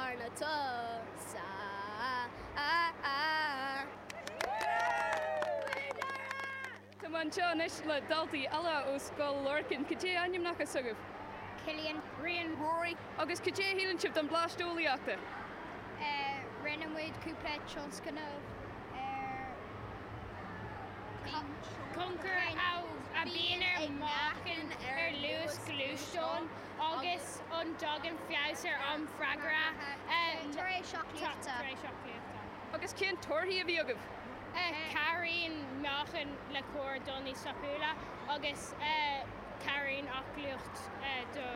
arna toghadh. Tá mé anseo anois le daltaí eile ó Scoil Lorcáin. Cad é ainmneacha s'agaibh? Cillian, Briain, Rory. Agus cad é a shíleann sibh den Bleaist Eolaíochta? Rinne muid cúpla tionscnamh ar thionchar a bhíonn ag meáchan ar luas gluaisteáin. Agus an dtagann feabhas ar am freagartha tar éis aclaíochta? Agus cén torthaí a bhí agaibh? Cabhraíonn meáchan le carr dul níos tapúla agus cabhraíonn aclaíocht do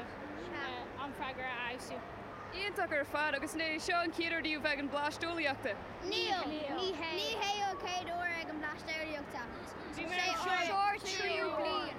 am freagartha a fheabhsú. Iontach ar fad! Agus an é seo an chéad uair daoibh bheith ag an Bleaist Eolaíochta? Níl! Ní hé! Ní hé an chéad uair ag an Bleaist Eolaíochta. Bhí mé anseo sé uair. Triú bliain.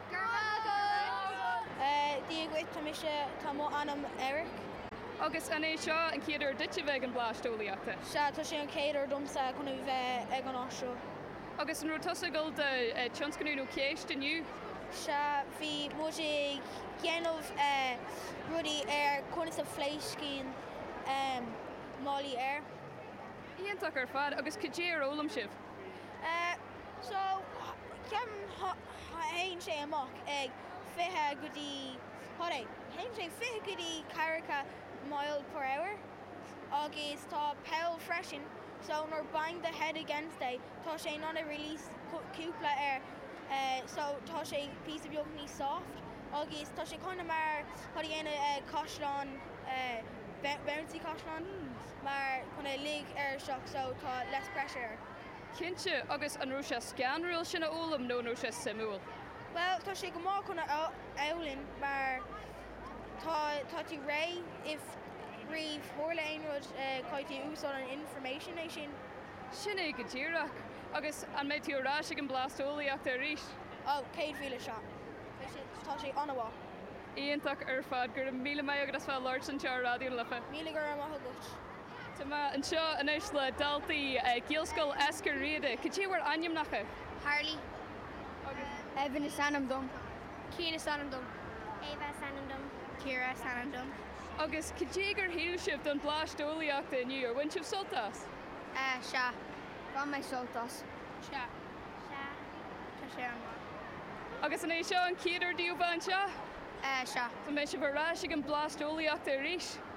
Go raibh maith agat! Dia dhuit, tá mise, tá mo ainm Eric. Agus an é seo an chéad uair duit a bheith ag an Bleaist Eolaíochta? Sea, tá sé an chéad uair domsa chun a bheith ag an áit seo. Agus an raibh tusa ag gabháil do tionscnamh nó ceist inniu? Sea, bhí muid ag déanamh rudaí ar conas a phléascann málaí aeir. Iontach ar fad, agus cad é ar fhoghlaim sibh? So, théann sé amach ag fiche go dtí, cad é, théann sé fiche go dtí ceathracha mile per hour agus tá poll freisin so nuair bang do head against é tá sé in ann a release cúpla air so tá sé píosa beag níos soft agus tá sé kinda mar, cad a dhéanamh caisleán bouncy caisleán mar chun a lig air isteach so tá less pressure air. Cinnte, agus an raibh sé scanrúil sin a fhoghlaim nó an raibh sé suimiúil? Bhuel, tá sé go maith chun a fhoghlaim mar tá tá tú réidh if riamh tharla aon rud caithfidh tú úsáid an information, é sin. Sin é go díreach. Agus an mbeidh tú ar ais ag an Bleaist Eolaíochta arís? Ó, céad mhíle sea. Beidh sé, tá sé an-mhaith. Iontach ar fad. Go raibh míle maith agat as bheith ag labhairt anseo ar Raidió na Life. Míle go raibh maith agat. Tá mé anseo anois le daltaí Ghaelscoil Eiscir Riada. Cad é bhur ainmneacha? Harley agus. Evan is ainm dom. Cian is ainm dom. Ava is ainm dom. Ciara is ainm dom. Agus cad é gur shíl sibh don Bleaist Eolaíochta inniu? Ar bhain sibh sult as? Sea. Bhain mé sult as. Sea. Sea. Tá sé an-mhaith. Agus an é seo an chéad uair daoibh bheith anseo? Sea. An mbeidh sibh ar ais ag an Bleaist Eolaíochta arís?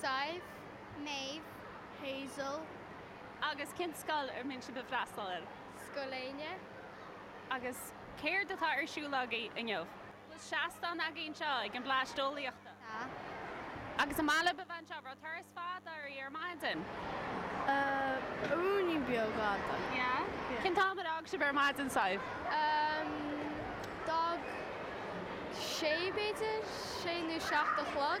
Sadhbh, Méabh, Hazel. Agus cén scoil ar mian sibh ag freastal air? Scoil Éinne. Agus céard atá ar siúl agaibh inniu? Bhfuil seastán agaibh anseo ag an bPlás Eolaíochta? Tá. Agus an maith libh a bheith anseo? An raibh turas fada agaibh ar maidin? Beagáinín beag fhada. Yeah? Cén t-am ar fhág sibh ar maidin, Sadhbh? D'fhág sé b'fhéidir sé nó seacht a chlog.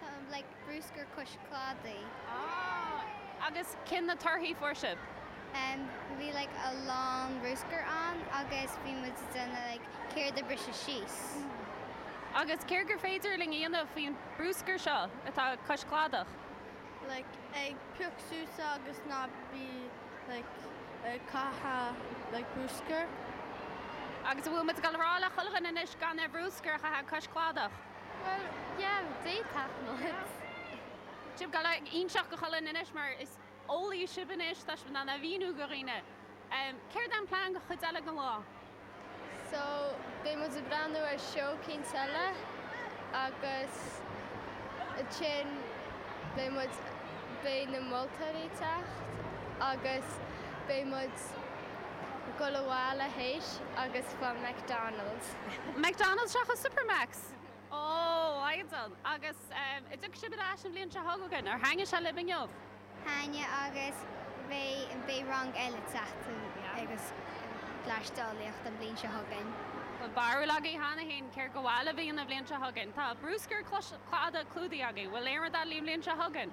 Tá an blag Bruascar Cois Cladaigh. Ah. Agus cé na torthaí fuair sibh? Em, bhí like a lán bruscar ann agus bhí muid ag déanamh like céard a briseadh síos. Agus céard gur féidir linn a dhéanamh faoin bruscar seo atá cois cladach? Like ag pioc suas é agus ná bí like ag caitheamh like bruscar. Agus an bhfuil muid ag rá le chuile dhuine anois gan an bruscar a chaitheamh cois cladach? Bhuel, yeah, d'fhéadfadh, but. Sibh go léir iontach go hálainn anois mar is eolaí sibh anois, tá sibh in ann a mhíniú do dhaoine. Céard é an plean don chuid eile den lá? So, beidh muid ag breathnú ar seó eicínt eile agus ansin beidh muid, beidh na moltóirí ag teacht agus beidh muid ag dul abhaile théis agus fáil McDonald's. McDonald's seachas Supermac's. Oh, a Mhaighdean. Agus an dtiocfaidh sibh ar ais an bhliain seo chugainn, ar thaitnigh sé libh inniu? Thaitnigh agus beidh rang eile ag teacht chuig an bPlás Eolaíochta an bhliain seo chugainn. Tá barúil agaibh cheana féin céard go bhfeil a bhíonn an bhliain seo chugainn. Tá bruscar cladaigh clúdaithe agaibh. Bhfuil aon rud eile an bhliain seo chugainn?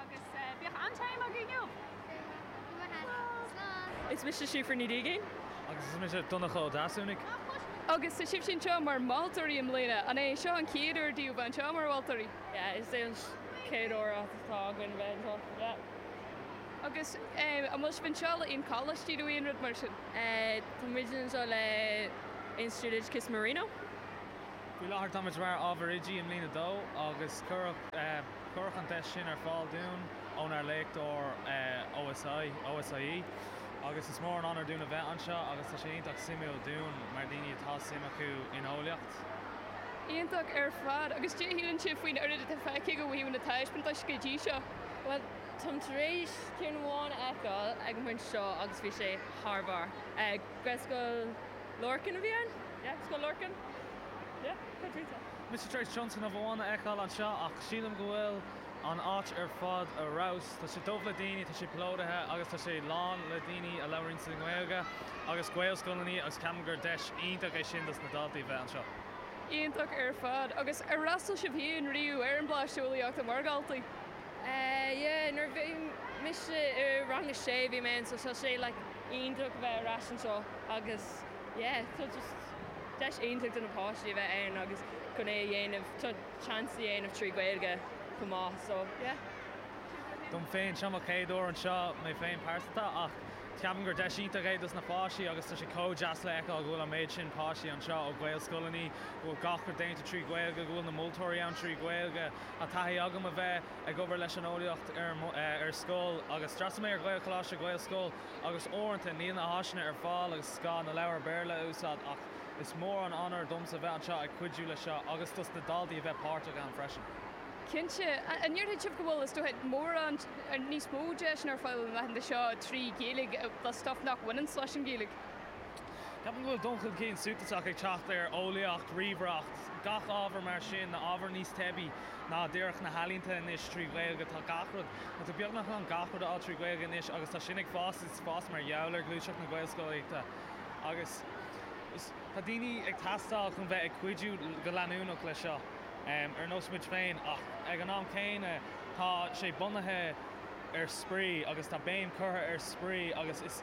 Agus bíodh an-time agaibh inniu! Go raibh maith agat. Slán. Is mise Síofra Ní Dhígín. Agus is mise Donncha Ó Deasúnaigh. Agus tá sibhse anseo mar mholtóirí i mbliana. An é seo an chéad uair daoibh a bheith anseo mar mholtóirí? Yeah, is é an chéad uair atá againn a bheith anseo, yeah. Agus an bhfuil sibh anseo le aon choláistí nó aon rud mar sin? Tá muid anseo le Institiúid Oideachais Marino. Faoi láthair táimid mar Ábhar Oidí i mbliain a dó agus cuireadh. Cuireadh an deis sin ar fáil dúinn ónár léachtóir OSI, OSIE, agus is mór an onóir dúinn a bheith anseo agus tá sé iontach suimiúil dúinn mar daoine atá suim acu in eolaíocht. Iontach ar fad. Agus cé shíleann sibh faoin oiread atá feicthe agaibh ó thaobh na taispeantais go dtí seo? Bhuel, táim tar éis ceann amháin a fheiceáil ag an bpointe seo agus bhí sé thar barr. Gaelscoil Lorcáin a bhí ann? Yeah? Scoil Lorcáin? Yeah? Cad a deir tú? Mise tar éis Johnson of One a fheiceáil anseo ach sílim go bhfuil an áit ar fad ar fheabhas. Tá sé dubh le daoine, tá sé plódaithe agus tá sé lán le daoine a labhraíonns an Ghaeilge agus Gaelscoileannaí agus ceapaim gur deis iontach é sin dos na daltaí a bheith anseo. Iontach ar fad. Agus ar fhreastal sibh féin riamh ar an mBlást Eolaíochta mar dhaltaí? Yeah, nuair a bhí mise i rang a sé bhí mé anso. Tá sé like iontach a bheith ar ais anso agus. yeah so just deis iontach do na páistí a bheith ann agus chun é a dhéanamh so chance a dhéanamh trí Ghaeilge chomh maith so yeah. Dom féin, seo mo chéad uair anseo mé féin go pearsanta ach ceapaim gur deis iontach é dos na páistí agus tá sé chomh deas le feiceáil go bhfuil an méid sin páistí anseo ó Ghaelscoileannaí, go bhfuil gach rud déanta trí Ghaeilge, go bhfuil na moltóirí ann trí Ghaeilge. Tá taithí agam a bheith ag obair leis an eolaíocht ar scoil agus d'fhreastail mé ar Ghaelcholáiste, Gaelscoil, agus uaireanta níl na háiseanna ar fáil agus is gá na leabhair Béarla a úsáid ach is mór an onóir domsa bheith anseo ag cuidiú leis seo agus dos na daltaí a bheith páirteach ann freisin. Cinnte, an ndéarfá go bhfuil, is dócha, mórán níos mó deiseanna ar fáil na laethanta seo trí Ghaeilge do stuff nach bhaineanns leis an Ghaeilge? Ceapaim go bhfuil dul chun cinn suntasach ag teacht ar eolaíocht, ríomhaireacht, gach ábhar mar sin, ábhar níos teibí ná díreach na healaíonta anois trí Ghaeilge. Tá gach rud, tá tú beagnach in ann gach rud a fháil trí Ghaeilge anois agus tá sin ag fás agus ag fás mar gheall ar ghluaiseacht na Gaelscolaíochta agus tá daoine ag teastáil chun bheith ag cuidiú go leanúnach leis seo ar nós muid féin ach ag an am céanna tá sé bunaithe ar spraoi agus tá béim curtha ar spraoi agus is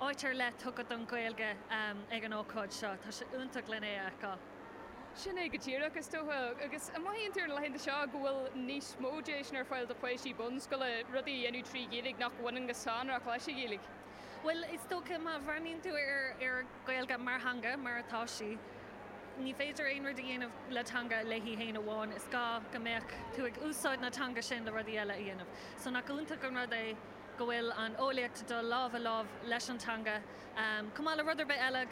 Áit ar leith tugtha don Ghaeilge ag an ócáid seo. Tá sé iontach len é a fheiceáil. Sin é go díreach, is dócha. Agus an mothaíonn tú ar na laethanta seo go bhfuil níos mó deiseanna ar fáil do pháistí bunscoile rudaí a dhéanamh trí Ghaeilge nach mbaineann go sonrach leis an Ghaeilge? Bhuel, is dócha má bhreathnaíonn tú ar an Ghaeilge mar theanga, mar atá sí, ní féidir aon rud a dhéanamh le teanga léi féin amháin. Is gá go mbeadh tú ag úsáid na teanga sin le rudaí eile a dhéanamh. So nach iontach an rud é go bhfuil an eolaíocht ag dul lámh i láimh leis an teanga, chomh maith le rud ar bith eile,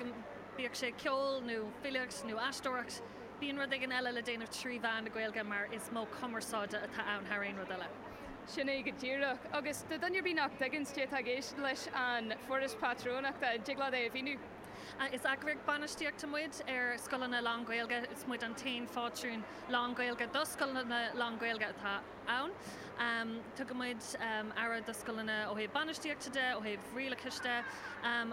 bíodh sé ceol nó filíocht nó aisteoireacht, bíonn rud éigin eile le déanamh trí mheán na Gaeilge mar is modh cumarsáide atá ann thar aon rud eile. Sin é go díreach. Agus do dhuine ar bith nach dtuigeanns céard atá i gceist leis an Foras Pátrúnachta, an dtig leat é a mhíniú? Is eagraíocht bainistíochta muid ar scoileanna lán-Ghaeilge. Is muid an t-aon phátrún lán-Ghaeilge do scoileanna lán-Ghaeilge atá. ann. Tugaimid aire do scoileanna ó thaobh bainistíochta de, ó thaobh rialachais de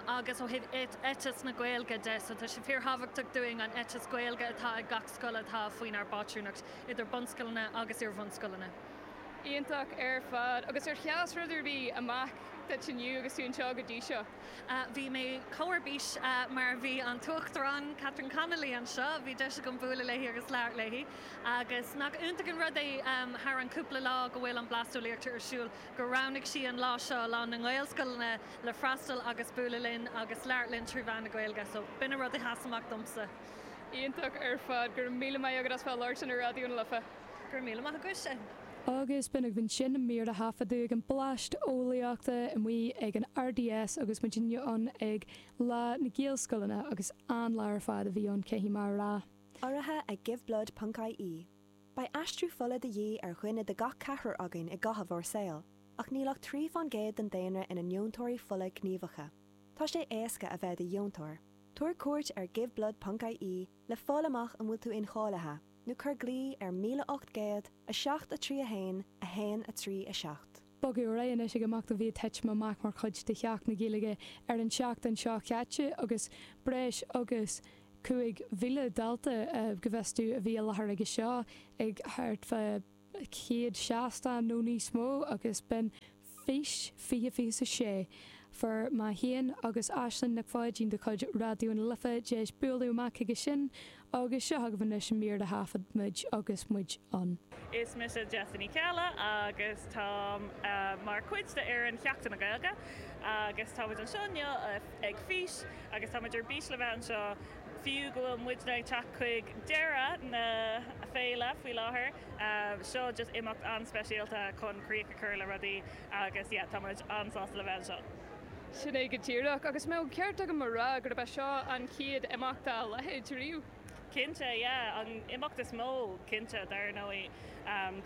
agus ó thaobh eiteas na Gaeilge de. So tá sé fíorthábhachtach dúinn an eiteas Gaeilge atá ag gach scoil atá faoinár bpátrúnacht, idir bunscoileanna agus iarbhunscoileanna. Iontach ar fad. Agus ar sheas rud ar bith amach duit inniu agus tú anseo go dtí seo? Bhí mé chomh ar bís mar a bhí an tUachtarán Catherine Connolly anseo. Bhí deis agam bualadh léi agus labhairt léi. Agus nach iontach an rud é thar an cúpla lá go bhfuil an Bleaist Eolaíochta ar siúl gur roghnaigh sí an lá seo, Lá na nGaelscoileanna le freastal agus bualadh linn agus labhairt linn trí mheán na Gaeilge. So b'in an rud a sheas amach domsa. Iontach ar fad. Go raibh míle maith agat as bheith ag labhairt linn ar Raidió na Life. Go raibh míle maith agat. Agus b'in daoibh ansin, mír a thaifeadadh ag an Bleaist Eolaíochta amuigh ag an RDS agus muidinne ann ag Lá na Gaelscoileanna agus an-lá ar fad a bhí ann caithfidh mé a rá. urraithe ag Giveblood ponc ie Beidh aistriú fola de dhíth ar dhuine de gach ceathrar againn i gcaitheamh ár saoil, ach níl ach trí fán gcéad den daonra ina ndeontóirí fola gníomhacha. Tá sé éasca a bheith i do dheontóir. Tabhair cuairt ar Giveblood ponc ie le fáil amach an bhfuil tú incháilithe, nó cuir glao ar 1807 3 1 1 3 7. Bogadh ar aghaidh anois ag imeacht a bhí ag titim amach mar chuid de Sheachtain na Gaeilge ar an tseachtain seo chaite agus breis agus 5,000 dalta go bhfios domh a bhí i láthair aige seo ag thart fá chéad seastán nó níos mó agus b'in Fís 2026. Fuair mé féin agus Aislinn Nic Pháidín de chuid Raidió na Life deis bualadh amach chuige sin agus seo agaibh anois an mír a thaifead muid agus muid ann. Is mise Jessa Ní Cheallaigh agus táim mar chuid de fhoireann Sheachtain na Gaeilge agus táimid anseo inniu ag fís agus táimid ar bís le bheith anseo fiú go bhfuil muidne ag teacht chuig deireadh na Féile faoi láthair, seo just imeacht an-speisialta chun críoch a chur le rudaí agus yeah, tá muid an-sásta le bheith anseo. Sin é go díreach, agus mbeadh an ceart agam a rá gurb é seo an chéad imeacht dá leithéid riamh. Cinnte, yeah, an imeacht is mó, cinnte, dar ndóigh.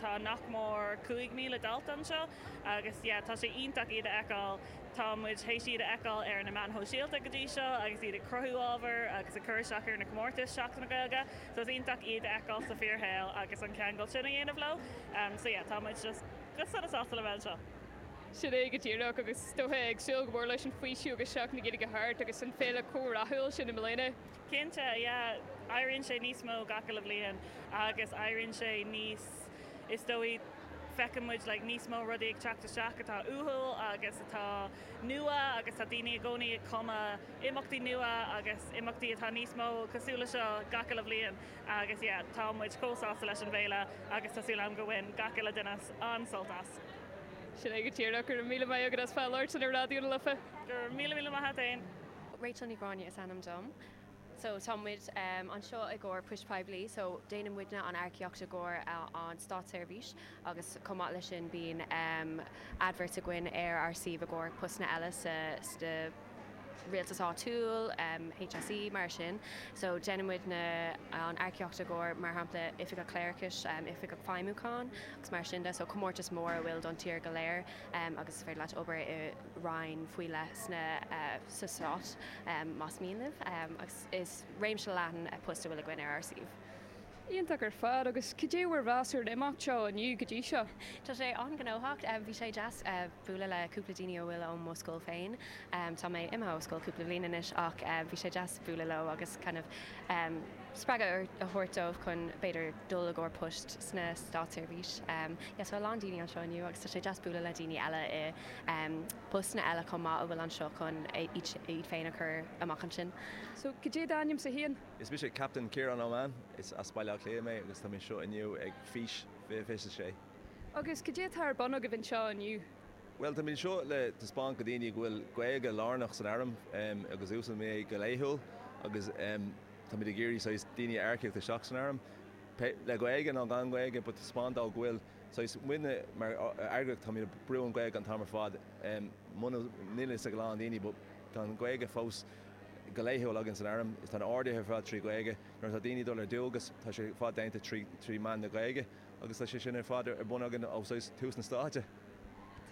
Tá nach mór 5,000 dalta anseo agus yeah, tá sé iontach iad a fheiceáil. Tá muid théis iad a fheiceáil ar na meáin shóisialta go dtí seo agus iad ag cruthú ábhair agus ag cur isteach ar na comórtais Sheachtain na Gaeilge so is iontach iad a fheiceáil sa bhfíorshaol agus an ceangal sin a dhéanamh leo so yeah tá muid just go sona sásta le bheith anseo. Sin é go díreach agus is dócha ag súil go mór leis an faoiseamh agus Seachtain na Gaeilge thart agus an féile chomh rathúil sin i mbliana. Cinnte, yeah. Éiríonn sé níos mó gach uile bhliain agus éiríonn sé níos, is dóigh, feiceann muid like níos mó rudaí ag teacht isteach atá uathúil agus atá nua agus tá daoine i gcónaí ag cumadh imeachtaí nua agus imeachtaí atá níos mó cosúil leis seo gach uile bhliain agus yeah, tá muid chomh sásta leis an bhféile agus tá súil agam go bhain gach uile duine an-sult as. Sin é go díreach. Go raibh míle maith agat as bheith ag labhairt le Raidió na Life. Go raibh míle míle maith a't fhéin. Rachel Ní Ghráinne is ainm dom. So tá muid anseo i gcomhair Poist Phoiblí so déanann muidne an earcaíocht i gcomhair an státseirbhís agus chomh maith leis sin bíonn adverts againn ar ár suíomh i gcomhair postanna eile sa rialtas áitiúil, HSE, mar sin. So déanann muidne an earcaíocht i gcomhair mar shampla Oifigeach Cléireachais, Oifigeach Feidhmiúcháin agus mar sin de so comórtais mhóra a bhfuil don tír go léir. agus is féidir leat obair i Roinn faoi leith sna, sa Stát más mian libh agus is réimse leathan poist a bhfuil againn ar ár suíomh. Iontach ar fad, agus cad é bhur mheas ar an imeacht seo inniu go dtí seo? Tá sé an-ghnóthach. Bhí sé deas bualadh le cúpla daoine a bhfuil ó mo scoil féin. Tá mé imithe ó scoil cúpla bhliain anois ach bhí sé deas bualadh leo agus kinda spreagadh a thabhairt dóibh chun b'fhéidir dul i gcomhair poist sna, státseirbhís. Yes, tá a lán daoine anseo inniu agus tá sé deas bualadh le daoine eile i bpostanna eile chomh maith a bhfuil anseo chun iad féin a chur amach ansin. So, cad é d'ainmse féin? Is mise Captaen Ciarán Ó Maoláin. Is as Baile Átha Cliath mé agus tá mé anseo inniu ag Fís 2026. Agus cad é atá ar bun agaibh anseo inniu? Bhuel, táimid anseo le taispeáint do dhaoine go bhfuil Gaeilge lárnach san Airm agus úsáidimid é go laethúil agus táimid ag iarraidh saghas daoine a earcaíocht isteach san Airm. pé le Gaeilge nó gan Gaeilge, but taispeáint dóibh go bhfuil saghas, muidne mar eagraíocht táimid ag brú an Gaeilge an t-am ar fad, muna, níl a fhios ag a lán daoine but tá an Gaeilge fós go laethúil againn san airm, tá na horduithe ar fad trí Gaeilge, nuair atá daoine ag dul ar dualgas tá sé ar fad déanta trí mheán na Gaeilge agus tá sé sin ar fad ar bun againn ó saghas tús na Stáite.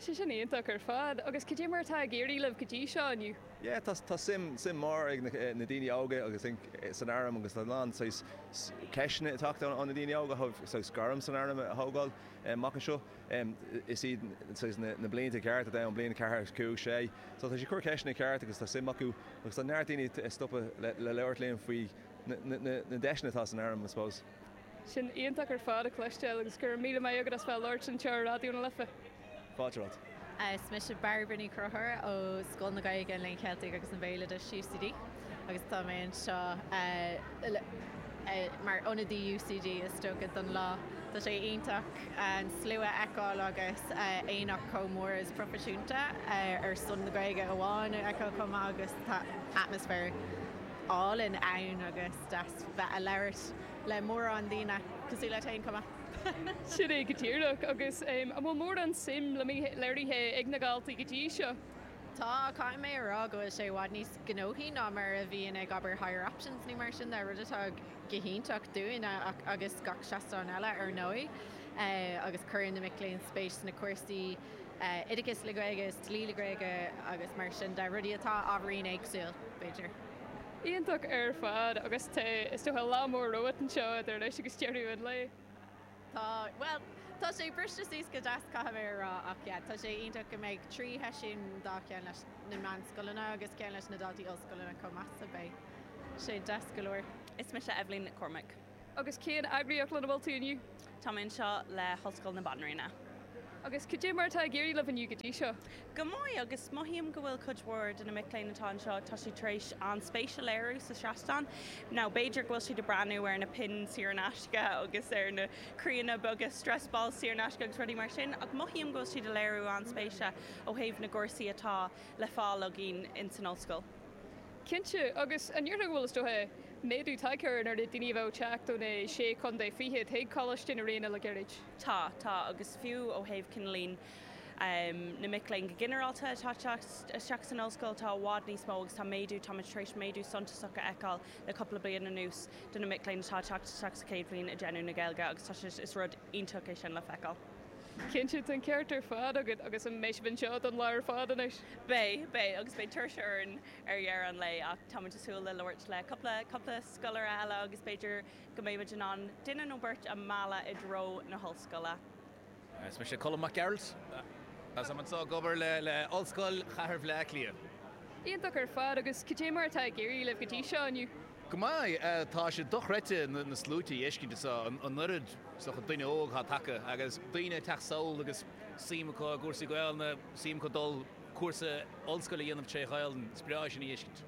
Tá sé sin iontach ar fad. Agus cad é mar atá ag éirí libh go dtí seo inniu? Yeah, tá, tá suim, suim mór ag na daoine óga I think san airm agus tá a lán saghas ceisteanna ag teacht ó na daoine óga faoi saghas gairm san airm a thógáil amach anseo. Is iad saghas na blianta cearta dúinn bliain a ceathair agus cúig sé so tá siad ag cur ceisteanna cearta agus tá suim acu agus tá neart daoine ag stopadh le labhairt linn faoi na deiseanna atá san airm I suppose. Sin iontach ar fad a chloisteáil agus go raibh míle maith agat as bheith ag labhairt anseo ar Raidió na Life. Fáilte romhat. Is mise Bairbre Ní Chonchúir ó Scoil na Gaeilge, an Léinn Cheiltigh agus an Bhéaloidis, UCD, agus tá mé anseo mar ionadaí UCD is dócha don lá. Tá sé iontach an slua a fheiceáil agus aonach chomh mór is proifisiúnta ar son na Gaeilge amháin a fheiceáil chomh maith agus tá atmaisféar álainn ann agus deas bheith ag labhairt. le mórán daoine cosúil leat fhéin chomh maith. Sin é go díreach. Agus an bhfuil mórán suim léirithe ag na daltaí go dtí seo? Tá, ach caithfidh mé a rá go bhfuil sé i bhfad níos gnóthaí ná mar a bhíonn ag abair Higher Options nó mar sin de, rud atá go hiontach dúinn agus gach seastán eile ar ndóigh. Agus cuireann na mic léinn spéis sna cúrsaí oideachais le Gaeilge is dlí le Gaeilge agus mar sin de, rudaí atá ábhairín éagsúil b'fhéidir. Iontach ar fad agus tá, is dócha, lá mór romhat anseo idir anois agus deireadh an lae. Tá, bhuel, tá sé briste suas go deas caithfidh mé a rá ach yeah, tá sé iontach go mbeidh trí sheisiún dhá cheann leis na meánscoileanna agus ceann leis na daltaí ollscoileanna chomh maith so beidh sé deas go leor. Is mise Eibhlín Nic Cormaic. Agus cén eagraíocht lena bhfuil tú inniu? Tá mé anseo le hOllscoil na Banríona. Agus cad é mar atá ag éirí libh inniu go dtí seo? Go maith, agus mothaím go bhfuil cuid mhór de na mic léinn atá anseo, tá siad tar éis an-spéis a léiriú sa seastán. Nó b'fhéidir go bhfuil siad ag breathnú ar na pinn saor in aisce agus ar na croíonna beaga stress balls saor in aisce agus rudaí mar sin, ach mothaím go bhfuil siad ag léiriú an-spéise ó thaobh na gcúrsaí atá le fáil againn in san ollscoil. Cinnte, agus an ndéarfá, bhuel, is dócha, méadú tagtha ar an líon daoine a bheadh ag teacht ó na Sé Chontae Fichead chuig Coláiste na Ríona le gairid? Tá, tá, agus fiú ó thaobh cineál líon na mic léinn go ginearálta atá ag teacht isteach san Ollscoil, tá i bhfad níos mó agus tá méadú, táimid tar éis méadú suntasach a fheiceáil le cúpla bliain anuas do na mic léinn atá ag teacht isteach sa chéad bhliain ag déanamh na Gaeilge agus tá sé, is rud iontach é sin le feiceáil. Cinnte, tá an ceart ar fad agat, agus an mbeidh sibh anseo don lá ar fad anois? Beidh, beidh, agus beidh tuirse orainn ar dheireadh an lae ach táimid ag súil le labhairt le cúpla, cúpla scoláire eile agus b'fhéidir go mbeidh muid in ann duine nó beirt a mhealladh i dtreo na hOllscoile. Is mise Colm Mac Gearailt agus táim anseo ag obair le, le Ollscoil Chathair Bhleá Cliath. Iontach ar fad, agus cad é mar atá ag éirí libh go dtí seo inniu? Go maith. Tá sé dochreidte na sluaite a fheiscint anso, an oiread san duine óg atá tagtha agus daoine ag teacht sall agus suim acu i gcúrsaí Gaelainne, suim acu dul cúrsa ollscoile a dhéanamh tré Ghaelainn. Is breá sin a fheiscint.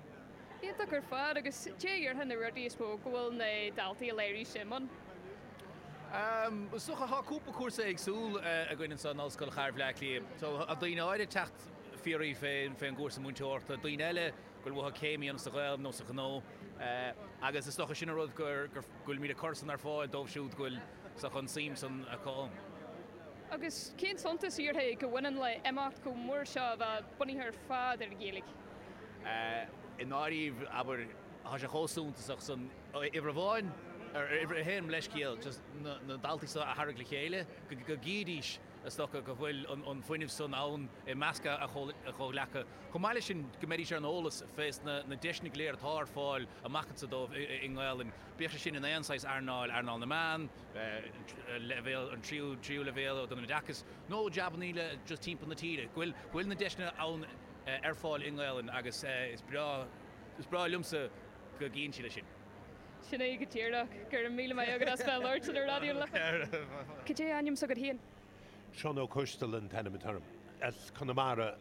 Iontach ar fad. Agus cad a déarfá na rudaí is mó go bhfuil na daltaí ag léiriú suim ann? Is dócha tá cúpla cúrsa éagsúil againn anso in Ollscoil Chathair Bhleá Cliath. Tá daoine áirithe ag teacht fiafraí fén gcúrsa múinteoireachta, daoine eile, go dtí céimeanna sa Ghaeilg nó sa ghnó agus is dócha sin an rud go bhfuilimíd ag cur san ar fáil dóibh siúd go bhfuil dócha an suim san acu ann. Agus cén suntas a déarfá go mbaineann le imeacht chomh mór seo a bheith bunaithe ar fad ar an Ghaeilg? I ndáiríre abair tá sé chomh suntasach san uimhir amháin ar, uimhir a haon leithscéal just na daltaí seo a tharraingt le chéile go gcífidís is dócha go bhfuil an fuinneamh san ann i measc a gcomhghleacaithe. Chomh maith leis sin, go mbeidís ar an eolas fés na deiseanna go léir atá ar fáil amach anso dóibh i nGaelainn, bíodh sé sin in aon saghas earnáil, earnáil na meán, leibhéal, an tríú leibhéal den oideachas, nó jabannaí eile just timpeall na tíre, go bhfuil na deiseanna ann ar fáil i nGaelainn agus is breá, is breá liomsa go gcíonn siad é sin. Sin é go díreach. Go raibh míle maith agat as bheith labhairt le Raidió na Life. Cad é ainm s'agat féin? Seán Ó Coistealbha an t-ainm atá orm. As Conamara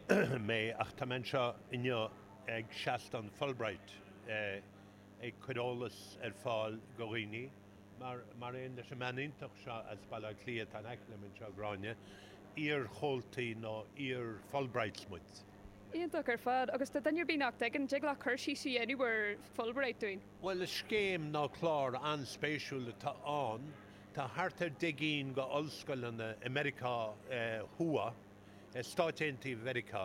mé ach tá mé anseo inniu ag seastán Fulbright ag cur eolas ar fáil go dhaoine mar aon leis an mbean iontach seo as Baile Átha Cliath atá in aice liom anseo, Gráinne. Iar-chomhaltaí nó iar-Fulbrights muid. Iontach ar fad agus do dhuine ar bith nach dtuigeann, dtig leat cur síos a dhéanamh ar Fulbright dúinn? Bhuel is scéim nó clár an-spéisiúil atá ann Tá thart ar deich gcinn go ollscoileanna i Meiriceá Thuaidh, i Stáit Aontaithe Mheiriceá,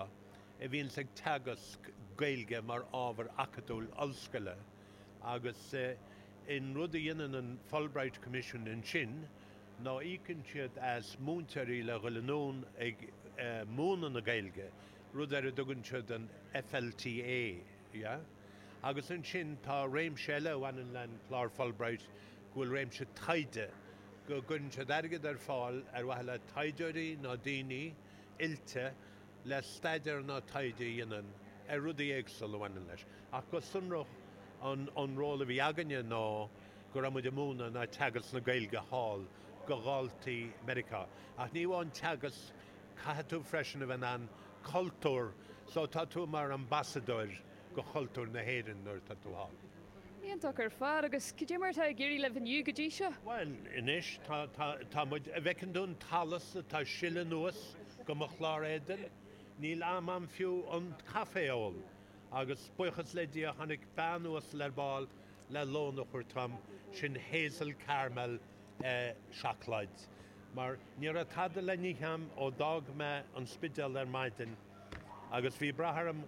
a bhíonns ag teagasc Gaeilge mar ábhar acadúil ollscoile agus an rud a dhéanann an Fulbright Commission ansin ná íocann siad as múinteoirí le dhul anonn ag múineadh na Gaeilge, rud ar a dtugann siad an FLTA. Agus ansin tá réimse eile a bhaineann leis an gclár Fulbright go bhfuil réimse taighde, go gcuireann siad airgead ar fáil ar mhaithe le taighdeoirí ná daoine oilte le staidéar ná taighde a dhéanamh ar rudaí éagsula a bhaineann leis. Ach go sonrach an ról a bhí againne ná go raibh muid ag múineadh ná teagasc na Gaeilge thall go dhaltaí Meiriceá. Ach ní amháin teagasc. Caithfidh tú freisin a bheith in ann cultúr so tá tú mar ambasadóir go chultúr na hÉireann nuair atá tú thall. Iontach ar fad. Agus cad é mar atá ag éirí libh inniu go dtí seo? Bhuel, anois tá, tá, tá muid, a' bhfeiceann tú an t-allas atá ag sileadh anuas go mo chlár éadain? Níl am a'm fiú an caife a ól. Agus buíochas le Dia tháinig bean uasal ar ball le lón a thabhairt dhom, sin Hazel Caramel, seacláid, mar ní raibh tada le n-ithe a'm ó d'fhág mé an Spidéal ar maidin, agus bhí brath orm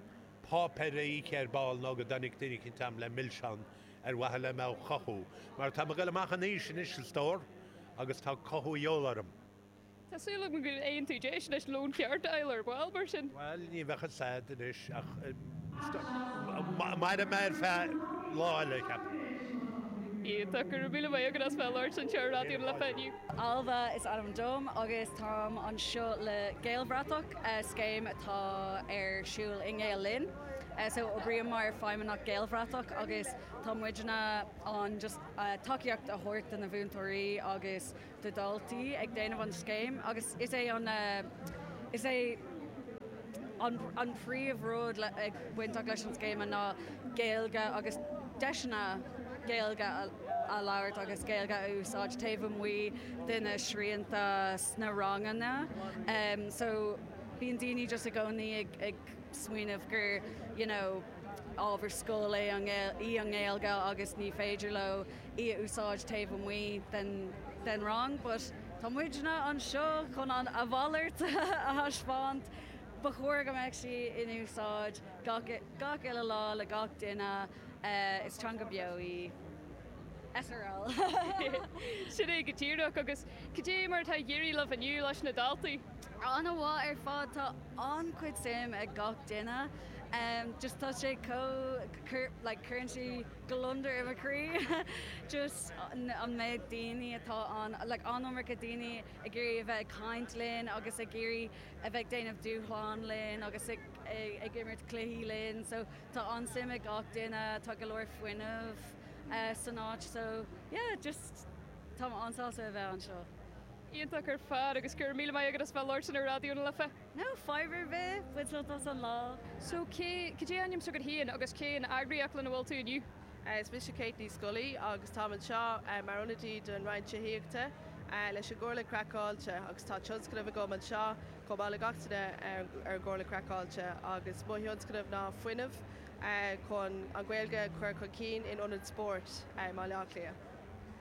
páipéar a ithe ar ball nó go dtáinig duine eicínt a'm le milseán, ar mhaithe le mé chothú, mar tá mé ag goil amach in aois anois, a stór, agus tá cothú de dhíobháil orm. Tá súil agam go bhfaighidh tú deis leis an lón ceart a fháil ar ball, mar sin. Bhail, ní bheadh a fhios a'd anois ach mairfidh mé ar feadh lá eile, cheapfainn. Iontach. Go raibh míle maith agat as bheith labhairt anseo ar Raidió na Life inniu. Ailbhe is ainm dom agus táim anseo le Gaelbhratach, scéim atá ar siúl i nGael Linn. So oibrím mar Feidhmeannach Gaelbhratach agus tá muidinne ann chun tacaíocht a thabhairt do na múinteoirí agus do dhaltaí ag déanamh an scéim agus is é an is é an an príomh rud ag bainteach leis an scéim ná Gaeilge agus deiseanna Gaeilge a labhairt agus Gaeilge a úsáid taobh amuigh de na srianta sna ranganna em so bíonn daoine just i gcónaí ag ag smaoineamh gur you know ábhar scoile é an í an Ghaeilge agus ní féidir leo í a úsáid taobh amuigh den rang but tá muidne anseo chun a mhalairt a thaispeáint. Ba chóir go mbeadh sí in úsáid gach uile lá le gach duine. Is teanga beo í. srl. Sin é go díreach. Agus cad é mar atá ag éirí libh inniu leis na daltaí? An-mhaith ar fad. Tá an-chuid suim ag gach duine. Just tá sé chomh like cuireann sí. gliondar i mo chroí just an méid daoine atá ann like an-iomarca daoine ag iarraidh a bheith ag caint linn agus ag iarraidh a bheith ag déanamh dúshlán linn agus ag ag imirt cluichí linn so tá an-suim ag gach duine tá go leor fuinnimh san áit so yeah just tá mé an-sásta a bheith anseo. Iontach ar fad agus go raibh míle maith agat as bheith labhairt ar Raidió na Life. Fadhb ar bith, bain sult as an lá. So cad é ainm s'agat féin agus cén eagraíocht lena bhfuil tú inniu? Is mise Kate Ní Scolaí agus táim anseo mar ionadaí don Roinn Tithíochta leis an gComhairle Craiceáilte agus tá tionscnamh agam anseo chomh maith le gach duine ar an gComhairle Craiceáilte agus mo thionscnamh ná fuinneamh chun an Ghaeilge a chur chun cinn in ionaid spóirt i mBaile Átha Cliath.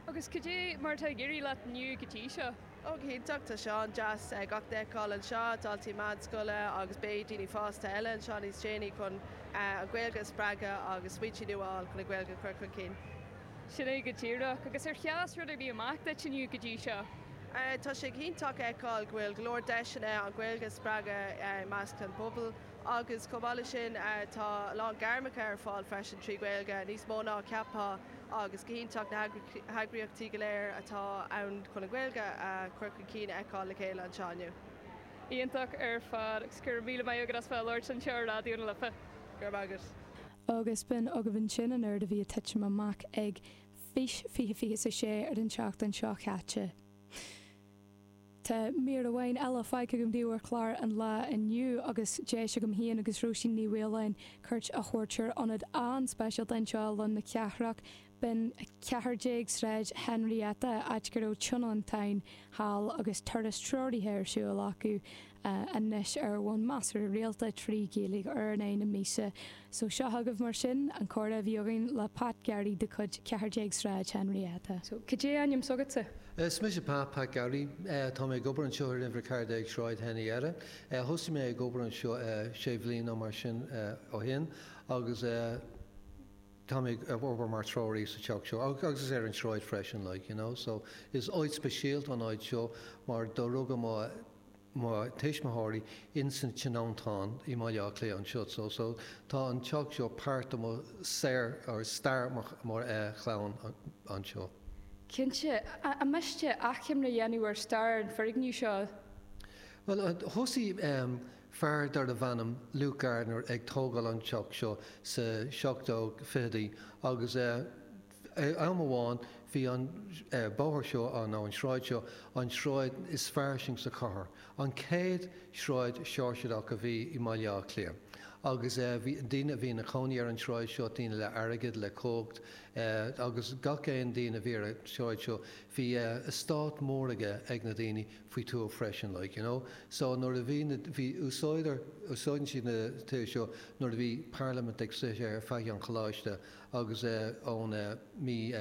Agus cad é mar atá ag éirí leat inniu go dtí seo? Go hiontach, tá sé an-deas gach duine a fheiceáil anseo, daltaí meánscoile agus beidh daoine fásta eile anseo níos déanaí chun an Ghaeilge a spreagadh agus smaointe nua a fháil chun an Ghaeilge a chur chun cinn. Sin é go díreach. Agus ar sheas rud ar bith amach duit inniu go dtí seo? Tá sé go hiontach a fheiceáil go bhfuil go leor deiseanna an Ghaeilge a spreagadh i measc an phobail. Agus chomh maith leis sin tá a lán gairmeacha ar fáil freisin trí Ghaeilge, níos mó ná a cheapfá agus go hiontach na heagraíochtaí go léir atá ann chun an Ghaeilge a chur chun cinn a fheiceáil le chéile anseo inniu. Iontach ar fad agus go raibh míle maith agat as bheith a labhairt anseo ar Raidió na Life. Go raibh maith agat. Agus b'in agaibh ansin an oiread a bhí ag titim amach ag Fís 2026 ar an tseachtain seo chaite. Tá mír amháin eile fágtha agam daoibh ar chlár an lae inniu agus bhí deis agam féin agus Róisín Ní Mhaoláin cuairt a thabhairt ar ionad an-speisialta anseo i Lár na Cathrach, b'in 14 Sráid Henrietta, áit go raibh tionóntáin seal agus turas treoraithe ar siúl acu. a anois ar bhonn measartha rialta trí Ghaeilge ar an Aoi na míosa. So seo chugaibh mar sin an comhrá a bhí againn le Pat Gearaí de chuid 14 Sráid Henrietta. So cad é ainm s'agatsa? Is mise Pat, Pat Garry. Tá mé ag obair anseo ar Uimhir 14 Sráid Henrietta. Thosaigh mé ag obair anseo sé bhliain nó mar sin ó shin agus tá mé ag obair mar treoraí sa teach seo agus ar an sráid freisin like you know so is áit speisialta an áit seo mar do rugadh mo mo thuismitheoirí insan tionóntáin i mBaile Átha Cliath anseo so so tá an teach seo páirt de mo saol or stair mo chlann anseo. Cinnte, an miste achoimre a dhéanamh ar stair an foirgneamh seo. Bhuel, thosaigh fear darbh ainm Luke Gardiner ag tógáil an teach seo sa 1720idí agus Am amháin bhí an bóthar seo, nó an sráid seo, an sráid is fairsing sa chathair. An céad sráid Seoirseach a bhí i mBaile Átha Cliath. Agus bhí daoine a bhí ina chónaí ar an sráid seo, daoine le airgead, le cumhacht, agus gach aon daoine a bhí ar an sráid seo bhí estáit mór aige ag na daoine faoi tuath freisin like, you know. So nuair a bhí na, bhí, úsáideann siad na tithe seo nuair a bhí parlaimint ag suí ar Faiche an Choláiste agus ón mí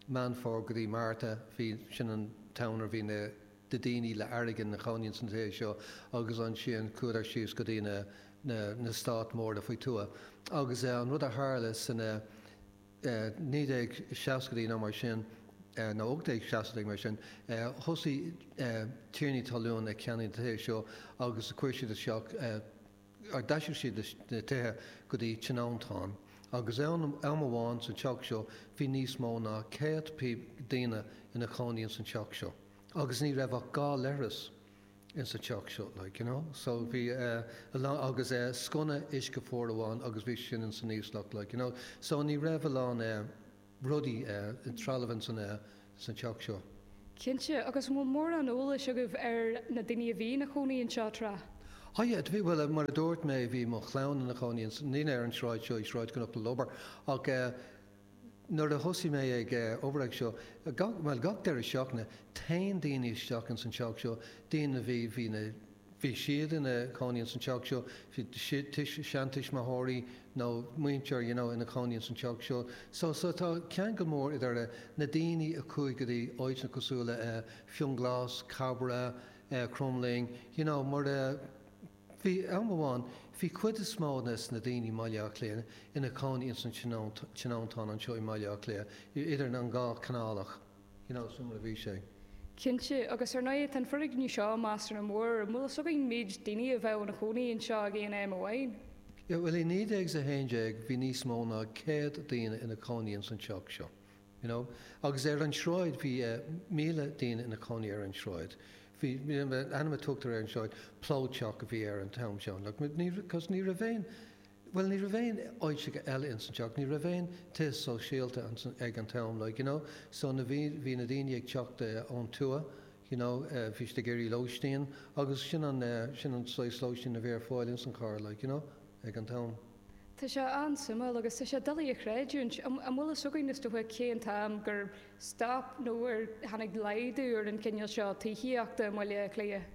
Meán Fómhair go dtí Márta bhí, sin an t-am nuair bhí na daoine le airgead ina chónaíonn sna tithe seo agus ansin chuadar síos go dtí na stáit móra faoi tuath agus an rud a tharla san 1960idí nó mar sin nó 1860idí mar sin thosaigh tiarnaí talún ag ceannaigh na tithe seo agus chuir siad isteach D'aistrigh siad na tithe go dtí tionóntáin agus am amháin san teach seo bhí níos mó ná céad daoine in a chónaí ins an teach seo agus ní raibh ach dhá leithreas ins an teach seo like you know so bhí a lán agus sconna uisce fuar amháin agus bhí sin ins an íoslach like you know so ní raibh a lán eh rudaí, trealamh in san teach seo. Cinnte. Agus an bhfuil mórán eolais agaibh ar na daoine a bhí ina chónaí anseo tráth? Á yeah, do bhí, bhuel mar a dúirt mé bhí mo chlann ina chónaí ins, ní ar an sráid seo, i Sráid Chnoc na Lobhar ach eh nuair a thosaigh mé ag eh obair anseo, gach, bhuel gach deireadh seachtaine, téann daoine isteach in san teach seo, daoine a bhí, bhí na, bhí siad ina chónaí ins an teach seo, seantuismitheoirí nó muintir you know ina chónaí ins an teach seo so so tá ceangal mór idir na daoine a chuaigh go dtí áiteanna cosúil le Fionnghlas, Cabrach, Cromghlinn you know mar bhí am amháin bhí cuid is mó des na daoine i mBaile Átha Cliath ina chónaí ins an tionóntán anseo i mBaile Átha Cliath idir an dhá canálach. You know, is amhlaidh a bhí sé. Cinnte, agus ar ndóigh tá an foirgneamh seo measartha mór, an bhfuil fhios againn cé mhéad daoine a bheadh ina chónaí anseo ag aon am amháin? Yeah, bhuel i 1911 bhí níos mó ná céad daoine ina cónaí ins an teach seo, you know, agus ar an sráid bhí eh míle daoine ina cónaí ar an sráid, bhí, ainm a tugtar ar an sráid, plódteach a bhí ar an t-am seo, like, but ní, cos ní raibh aon, bhuel ní raibh aon áiteacha eile ins an teach, ní raibh aon tithe sóisialta ag an t-am like you know so na bhí, bhí na daoine ag teacht ón tuath you know bhí siad ag iarraidh lóistín agus sin an, sin an saghas lóistín a bhí ar fáil ins an chathair like you know ag an t-am. Tá sé an-suimiúil agus tá sé doiligh a chreidiúint, an bhfuil fhios againn is dócha cé an t-am gur stop nó ar tháinig laghdú ar an gcineál seo tithíochta i mBaile Átha Cliath?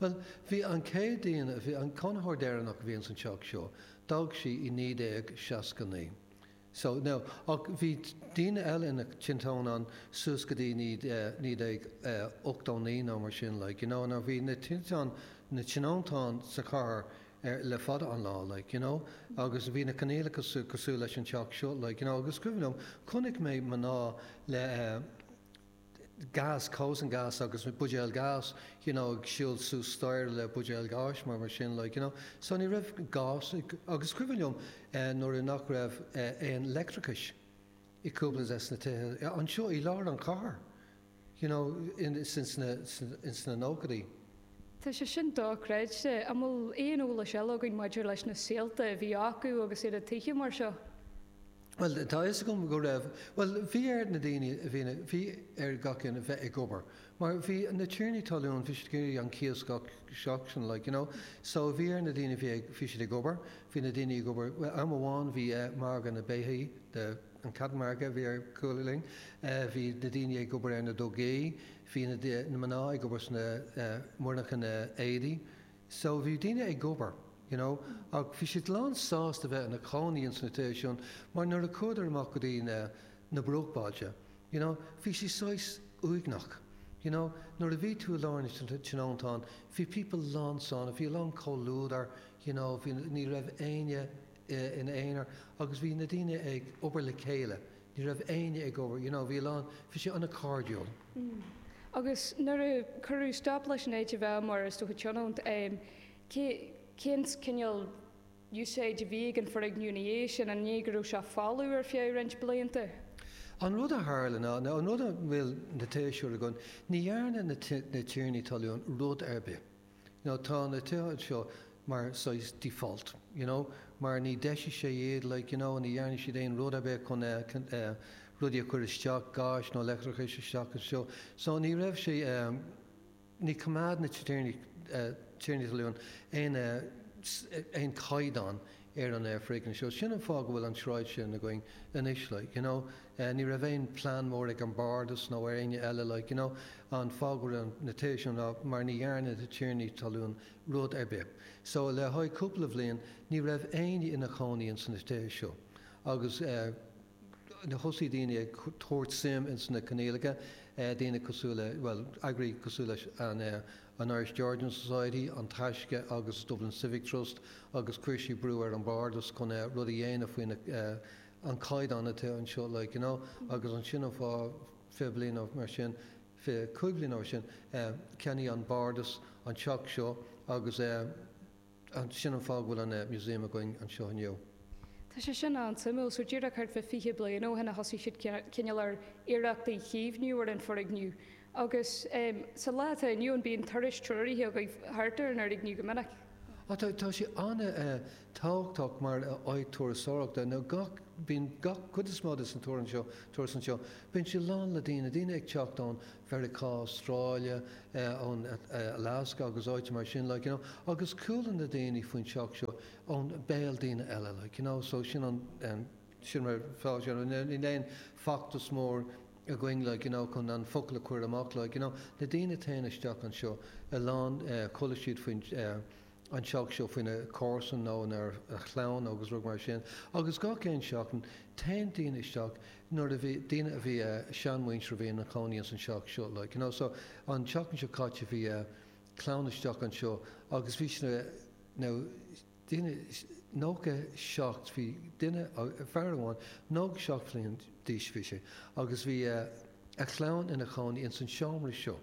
Bhuel, bhí an chéad duine, bhí an cónaitheoir deireanach a bhí ins an teach seo, d'fhág sí i 1969. So, now, ach bhí daoine eile ina tionóntáin suas go dtí 1989 nó mar sin, like, you know, now bhí na tiontáin, na tionóntáin sa chathair ar, le fada an lá, like, you know, agus bhí na coinníollacha sa, cosúil leis an teach seo, like, you know, agus cuimhin liom, chonaic mé mná le, eh, gás, cócaireán gás, agus buidéal gas, you know, ag siúl suas staighre le buidéal gáis, mar, mar sin, like, you know. So ní raibh gás, agus cuimhin liom nuair a nach raibh aon leictreachais i gcúpla de na tithe anseo i lár an chathair, you know, in, ins na, ins na nóchaidí. Tá sé sin dochreidte. An bhfuil aon eolais eile againn maidir leis na saolta a bhí acu agus iad i dtithe mar seo? Bhuel, tá a fhios agam go raibh, bhuel, bhí ar na daoine a bhí in a, bhí ar gach aon a bheith ag obair. Mar bhí na tiarnaí talún, bhí siad ag iarraidh an cíos gach seachtain, like, you know. So, bhí ar na daoine a bhí ag, bhí siad ag obair, bhí na daoine ag obair, bhuel, am amháin bhí eh margadh na mbeithíoch, the, an cattle market a bhí ar cúl linn, eh bhí na daoine ag obair ar na dugaí, bhí na, na mná ag obair sna, eh, monarcha na n-éadaí, So bhí daoine ag obair, you know, ach bhí siad lán sásta bheith in a cónaí ins na tithe sin mar nuair a chuadar amach go dtí na, na bruachbailte, you know, bhí sé saghas uaigneach, you know, nuair a bhí tú i lár na tionóntán bhí pobal lán sona, bhí a lán comhluadar, you know, bhí, ní raibh éinne in a aonar agus bhí na daoine ag obair le chéile, Ní raibh éinne ag obair, you know, bhí a lán, bhí sé an-cairdiúil. Mm. Agus nuair a cuireadh stop leis an áit a bheith mar is dócha tionónt, em, cé, cén cineál úsáide a bhí ag an foirgneamh ina dhiaidh sin, an é go raibh sé folamh ar feadh roinnt blianta? An rud a tharla ná, nó an rud a bhfuil na taisce againn, ní dhearna na, na tiarnaí talún rud ar bith. Now tá na tithe anseo mar saghas default, you know, mar ní deisigh sé iad, like, you know, ní dhearna siad aon rud ar bith chun eh, rudaí a chur isteach, gáis nó leictreachais isteach anseo. So ní raibh sé eh, níor choimeád na tiarnaí, eh, tiarnaí talún aon eh, aon chaighdeán, ar an aer faoi dheon seo. Sin an fáth go bhfuil an sráid sin againn anois like, you know. Ní raibh aon plean mór ag an Bardas nó ar éinne eile like, you know. An fáth go raibh na tithe seo ná mar ní dhearna na tiarnaí talún rud ar bith. So le haghaidh cúpla bhliain ní raibh éinne ina chónaí ins na tithe seo agus eh, thosaigh daoine ag tabhairt suim ins na Coinníollacha, daoine cosúil le, bhuel, eagraí cosúil leis an Irish Georgian Society, An Taisce agus Dublin Civic Trust agus chuir sí brú ar an Bhardas chun rud a dhéanamh faoi na, an caighdeán atá anseo like, you know. Agus ansin an fáth, fiche bliain nó mar sin, fiche cúig bliain nó mar sin, cheannaigh an Bhardas an teach seo agus eh, Sin an fáth go bhfuil an Museum againn anseo inniu. Tá sé sin an-suimiúil. So díreach thart fá fiche bliain ó shin a thosaigh siad cineál ar iarracht a chaomhnú ar an foirgneamh. Agus sa lá atá inniu ann bíonn turais treoraithe agaibh thart ar an fhoirgneamh go minic. Ó tá, tá sé an-tábhachtach mar áit turasóireachta. Nó gach, bíonn gach, cuid is mó de sna turas anseo, turas anseo, bíonn sé lán le daoine, daoine ag teacht ón Mheiriceá, Astráile, ón Alaska agus áiteanna mar sin like you know agus chuala na daoine faoin teach seo ón béal daoine eile like you know so sin an sin mar atá sé níl aon feachtas mór againn like you know chun an focal a chur amach like you know na daoine tagann isteach anseo a lán chuala siad faoin an teach seo óna comharsan nó óna chlann agus rud mar sin agus gach aon seachtain tagann daoine isteach nuair a bhí, daoine a bhí eh, seanmhuintir a bhí ina chónaí ins an teach seo like you know so an tseachtain seo caite bhí eh, clann isteach anseo agus bhí siad eh, now daoine, nócha seacht, bhí duine, fear amháin, nócha seacht bhliain d'aois a bhí sé agus bhí eh, a chlann ina chónaí ins an seomra seo.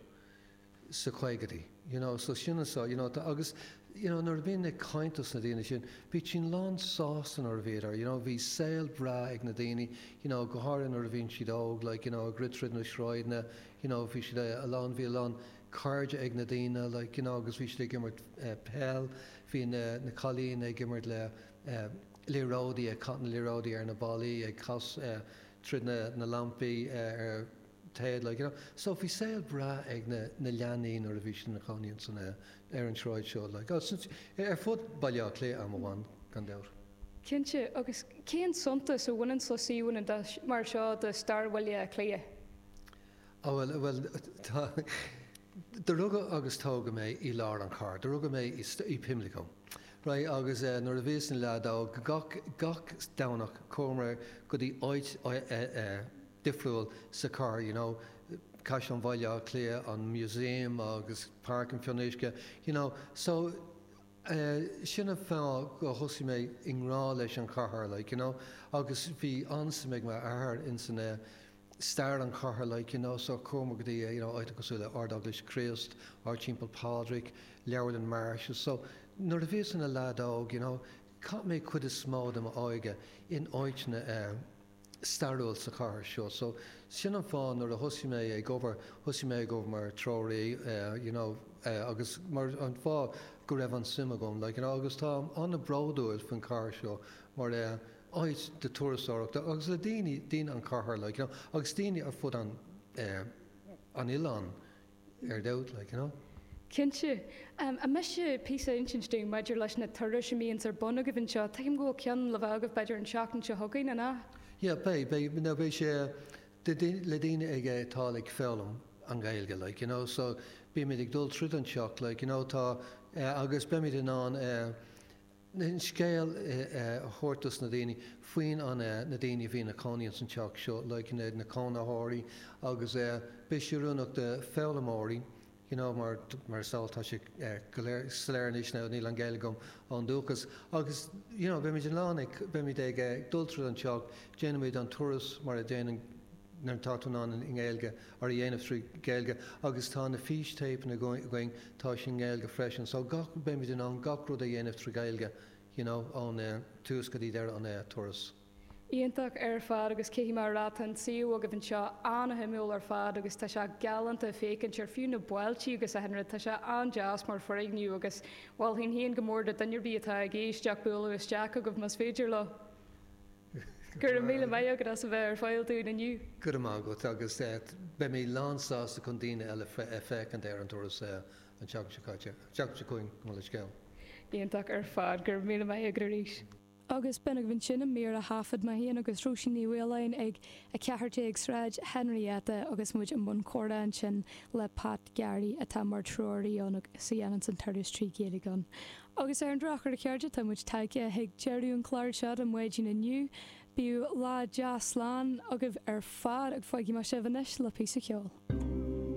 sa chaogaidí. You know, so sin an sá, you know, tá, agus, you know, nuair a bhínn ag caint dos na daoine sin, bhí siad lán sásta nuair a bhíodar, you know, bhí saol breá ag na daoine, you know, go háirithe nuair a bhíonn siad óg, like, you know, ag rith tríd na sráideanna, you know, bhí siad a lán, bhí a lán cairde ag na daoine, like, you know, agus bhí siad ag imirt peil, bhí na, na cailín ag imirt le eh liathróidí, ag caith na liathróidí ar na ballaí, ag cas eh tríd na, na lampaí eh ar, téad like you know so bhí saol breá ag na na leanaí nuair a bhí siad ina chónaí ins an air ar an tsráid seo like oh since ar ar fud Bhaile Átha Cliath am amháin gan dabht. Cinnte, agus cén suntas a bhaineanns le suíomhanna de mar seo de stair Bhaile Átha Cliath? Oh bhuel bhuel tá do rugadh agus tógadh mé í lár an char do rugadh mé í í Pimlico right agus eh nuair a bhíos ina leaid óg gach gach Domhnach chuamar go dtí áit eh eh difriúil sa chathair, you know, Caisleán Bhaile Átha Cliath, an Museum agus Páirc an Fhionnuisce, you know. So, eh, sin an fáth gur thosaigh mé i ngrá leis an chathair, like, you know, agus bhí an-suim ag m'athair ins an, eh, stair an chathair, like, you know, so chuamar go dtí, you know, áiteanna cosúil le Ard-Eaglais Chríost, Ard-Teampall Phádraig, Leabharlann Marsh's. So, nuair a bhíos ina leaid óg, you know, chaith mé chuid is mó de m'óige in áiteanna, eh, stairiúil sa chathair seo. So, sin an fáth nuair a thosaigh mé ag obair, thosaigh mé ag obair mar treoraí you know agus mar, an fáth go raibh an suim agam like you know agus tá mé an-bhródúil faoin chathair seo mar áit do turasóireachta agus le daoine, daoine an chathair like you know agus daoine ar fud an, an oileáin. ar ndóigh, like, you know. Cinnte. An miste píosa a inseacht dúinn maidir leis na turais a mbíonns ar bun agaibh anseo? Tuigim go bhfuil ceann le bheith agaibh b'fhéidir an seachtain seo chugainn, an ea? Yeah, beidh, beidh, no beidh sé le daoine ag a atá like ag foghlaim an Ghaeilge like, you know, so bímid ag dul tríd an teach like, you know, tá agus beimid in ann eh, an scéal a thabhairt dos na daoine faoi na na daoine a bhí ina cónaí ins an teach seo like na na cónaitheoirí agus beidh sé oiriúnach do foghlaimeoirí you know mar mar is eol tá sé go soiléir anois now níl an Ghaeilge agam ón dúchas agus you know beimid in ann ag beimid ag dul tríd an teach déanaimid an turas mar a déanann ár gcleachtadh ann i nGaeilge ar a dhéanamh trí Ghaeilge agus tá na físthéipeanna againn, tá siad i nGaeilge freisin so gach, beimid in ann gach rud a dhéanamh trí Ghaeilge you know ón tús go dtí deireadh an turas. Iontach ar fad agus caithfidh mé a rá tá an suíomh agaibh anseo an-shuimiúil ar fad agus tá sé galánta féachaint ar fiú na ballaí agus achan rud, tá sé an-deas mar foirgneamh agus mholfainn féin go mór do duine ar bith atá ag éisteacht bualadh isteach chugaibh más féidir leo. Go raibh míle maith agat as a bheith ar fáil dúinn inniu. Go raibh maith agat agus beidh mé lán sásta chun daoine eile a féachaint ar an turas an tseachtain seo caite, seachtain seo chugainn gabh mo leithscéal. Iontach ar fad, go raibh míle maith agat arís. Agus b'in agaibh ansin an mír a thaifead mé féin agus Róisín Ní Mhaoláin ag 14 Sráid Henrietta agus muid i mbun comhrá ansin le Pat Garry atá mar treoraí ann agus a dhéananns an turas trí Ghaeilge ann. Agus ar an drochuair a chairde, tá muid tagtha chuig deireadh an clár seo don Mhaidin inniu. Bíodh lá deas slán agaibh ar fad agus fágaimid sibh anois le píosa ceoil.